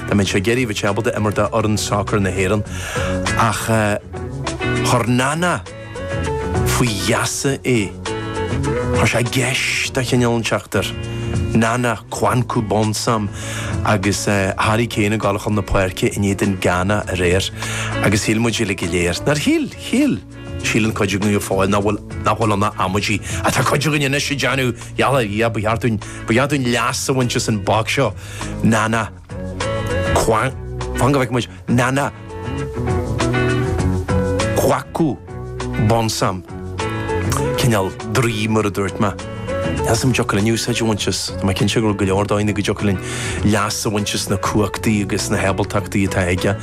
Dá mbeadh sé ag iarraidh a bheith ábalta imirt do fhoireann sacair na hÉireann. Ach chuir Nana faoi gheasa é. Chuir sé geis de chineál inteacht air. Nana Kwaku Bonsam agus Harry Kane ag dul chun na páirce in éadan Ghana aréir agus shíl muid uilig go léir, nár shíl? Shíl! Síleann cuid againn go fóill nach bhfuil nach bhfuil ann ach amaidí. Ach tá cuid againn anois ag déanamh hell yeah, ba cheart dúinn, ba cheart dúinn leas a bhaint as an boc seo. Nana Kwa, fan go bhfeice muid, Nana Kwaku Bonsam, cineál draoi, mar a dúirt mé. Is an dtiocfadh linn úsáid a bhaint as, tá mé cinnte go raibh go leor dóigheanna go dtiocfadh linn leas a bhaint as na cumhachtaí agus na hábaltachtaí atá aige.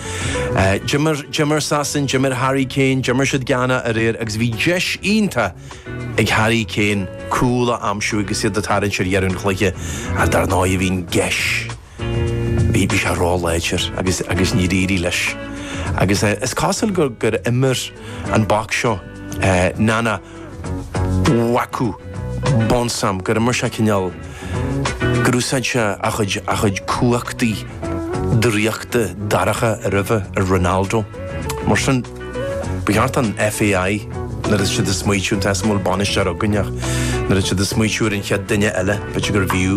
Eh, d'imir d'imir Sasain, d'imir Harry Kane, d'imir siad Ghana aréir agus bhí deis iontach ag Harry Kane cúl a aimsiú agus iad ag tarraingt ar dheireadh an chluiche ach dar ndóigh bhí an gheis Bhí sé ró-láidir agus agus níor éirigh leis. Agus is cosúil gur gur imir an boc seo Nana Kwaku Bonsam, gur imir sé cineál gur úsáid sé a chuid a chuid cumhachtaí draíochta dorcha roimhe ar Ronaldo. Mar sin Ba cheart an FAI, nuair atá siad ag smaoitiú tá a fhios agam go bhfuil bainisteoir againn ach nuair atá siad ag smaoitiú ar an chéad duine eile, b'fhéidir gurbh fhiú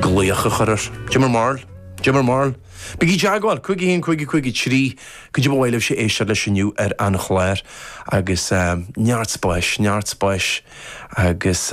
glaoch a chur air. Cad é bhur mbarúil? Cad é bhur mbarúil? Bígí ag teagmháil! 5 1 5 5 3 cad é ba mhaith libhse éisteacht leis inniu ar an chlár agus neart spáis, neart spáis agus.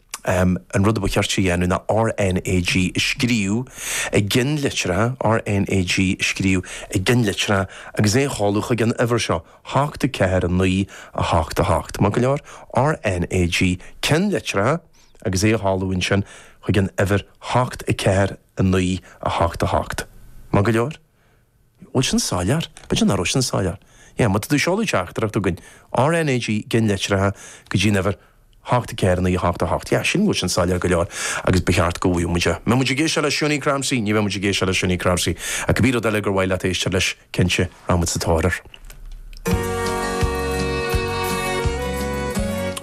An rud a ba cheart a dhéanamh ná RNAG a scríobh i gcinn litreacha, RNAG a scríobh i gcinn litreacha agus é a sheoladh chuig an uimhir seo, 8 4 9 8 8. Maith go leor? RNAG, cinn litreacha agus é a sheoladh ansin chuig an uimhir 8 4 9 8 8. Maith go leor? Bhfuil sin soiléir? B'fhéidir nach raibh sin soiléir. Yeah, má tá tú ag seoladh teachtaireacht chugainn, RNAG i gcinn litreacha go dtí an uimhir 84988. Yeah, sin bhfuil sin soiléir go leor agus ba cheart go bhfaigheadh muid é. An mbeidh muid ag éisteacht le Shunie Crampsey, ní bheidh muid ag éisteacht le Shunie Crampsey ach cibé rud eile gur mhaith leat éisteacht leis, cinnte, rachaidh muid sa tóir air.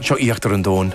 Seo Íochtar an Domhain.